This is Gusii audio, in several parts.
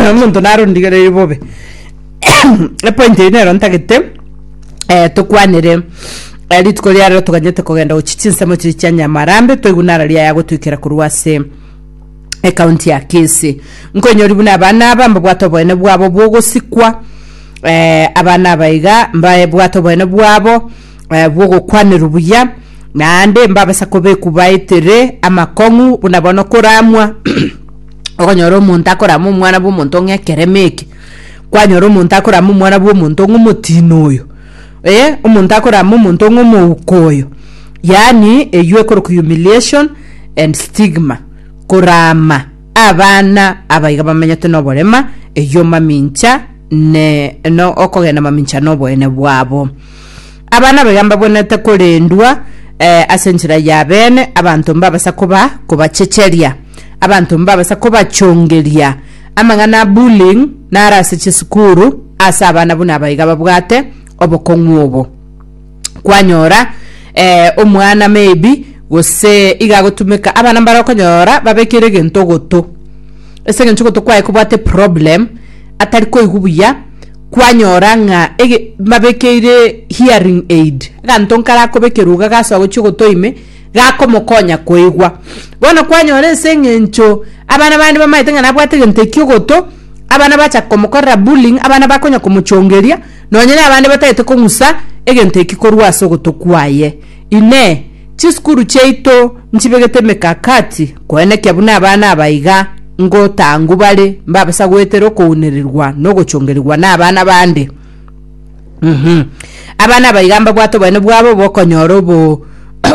omonto naro ondigereiri bobe epointi eyio nero ntagete eh, tokwanere eh, rituko ria rero toganyete kogenda gochi chinsemo chiri chia nyamarambe toigwe nara riaya gotoikera korwa ase ekaunti ya kisi nkoinyori buna abana aba mbabwate oboene bwabo bwogosikwa eh, abana abaiga mbabwate oboene bwabo eh, bw'ogokwanerwa buya naende mbabasa kobekwa baetere amakong'u buna bono koramwa okonyora omonto akorama omwana bw'omonto ng'a ekereme eke kwanyora omonto akorama omwana bw'omonto ng'a omotino oyo eh, omonto akorama omonto ng'a omouko oyo yaani eywo ekoroka humiliation and stigma korama abana abaiga bamenyete noborema eywo mamincha ne no okogenda mamincha noboene bwabo Aba nabo iga mbabwenete korendwa eh, ase enchera y'abeene, abanto mbabasa koba kobachecheria, abanto mbabasa kobachongeria amang'ana a bullying naro ase chisukuru ase abana buna aba iga babwate obokong'u obo kwanyora eh, omwana maybe gose iga agotumeka abana mbare okonyora babekire egento ogoto ase eng'encho ogoto kwaye kobwate problem atari koigwa buya kwanyora ng'a ege mbabekeire hearing aid, aganto nkarakobekerwa iga gasoa gochia ogotoa ime, gakomokonya koigwa. Bono kwanyora ase eng'encho abana bande bamaete ng'a nabwate egento ekio ogoto, abana bacha komokorera bullying, abana bakonya komochongeria, nonye na abande batagete kong'usa egento ekio korwa ase ogoto kwaye. Inee! Chisukuru chiaito nchibegete emekakati koenekia buna abana aba iga ngotangu bare mbabisa goetera okounererigwa na ogochongerigwa nabana bande? Uhum. Abana aba iga mbabwate oboene bwabo bw'okonyora obo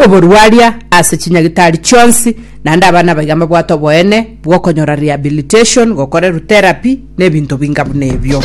oborwaria ase chinyagitari chionsi, naende abana aba iga mbabwate oboene bw'okonyora rehabilitation, gokorerwa therapy, na ebinto binga buna ebio.